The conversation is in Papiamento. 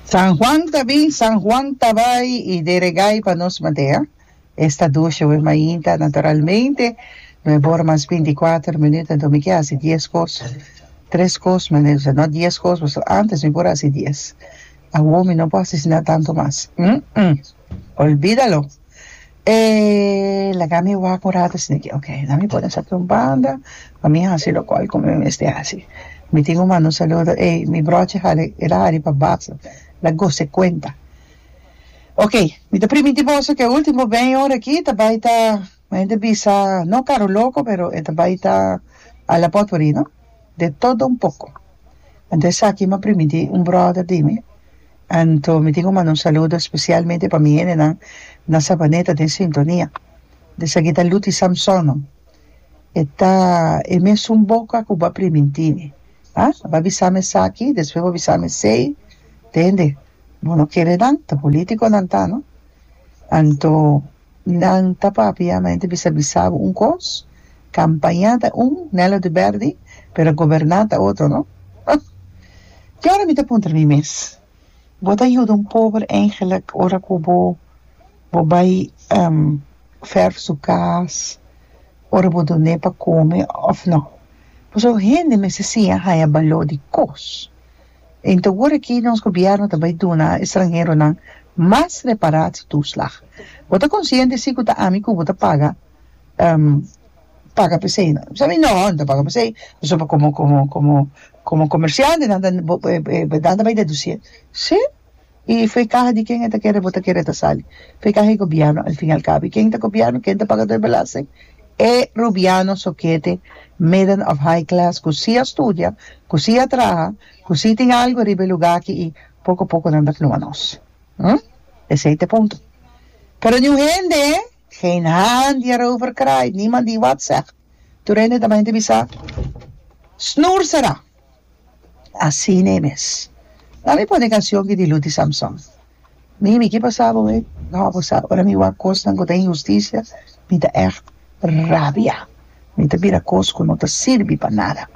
San Juan ta bin, San Juan ta bai y de regai pa nos matea. Esta dushe we mainta naturalmente no e bor mas binti kuater minuut anto mi ke hasi dies kos, tres kos manera sa no dies kos pask antes mi por hasi dies. Awo mi no por hasi asina tanto mas. Umm. Olbida lo. E laga mi wak un rato esei di oke, la mi pone sa aki un banda pa mi hasi lokual ku mi mester hasi. Mi tin ku manda un saludo, ey, mi brochi hali, el a hari pa basa, el a gosa kuenta. Oke, mi ta primintí boso ku e último beny ora aki ta bai ta, mi ta bisa, no karuloko, pero e ta bai ta Alapotpuri, no? de todo un poco anto esaki mi a primiti un brother di mi anto mi tin cu manda un saludo especialmente pa mi hendenan na Sabaneta den sintonia di esaki ta Luti Samsono e ta e mesun boca cu bo a primintimi ah bo a bisami esaki despues bo a bisami esey tende bo no kere nan ta politiconan ta no anto. Nan ta papia ma ente bisa bisabo un kos, kampañá ta un, Nelo di bèrdi, pero goberná ta otro no. Huh! Di ora mi ta puntra mi mes, Bo ta yuda un pober engelek ora ku bo bo bai vèrf su kas, ora bo dun'é pa kome òf no? Pasobra hende mester siña haña baló di kos. En ta wor aki nos gobièrnu ta bai duna estranheronan mas reparat tuslag. Bo ta konsiente si ku ta ami ku bo ta paga paga p'esei? Bo sa mi? Nò, no ta paga p'esei. Pasobra komo komo komo komo komersiante nan ta nan ta bai dedusié. Sí? y fue caha di ken e ta kere bo ta kere ta sali fue caha di gobierno al fin al cabo y ken ta gobierno ken ta pagador belasting e rubiano sokete midden of high class cu si a studia cu si a traha cu si tin algo ariba e lugar aki y poco poco nan ta fluma nos hm esey ta e punto pero niun hende geen haan di a rover cry niemand di wat zeg. Tur hende ta bajente bisa, Snoer será! Asina e mes. Nan mi pone canción ki di Luti Samson. Mimi, ki pasa bo ei? No, bo sa, ora mi wak cosnan cu ta injusticia, mi ta echt rabia. Mi ta bira cos cu no ta sirbi pa nada.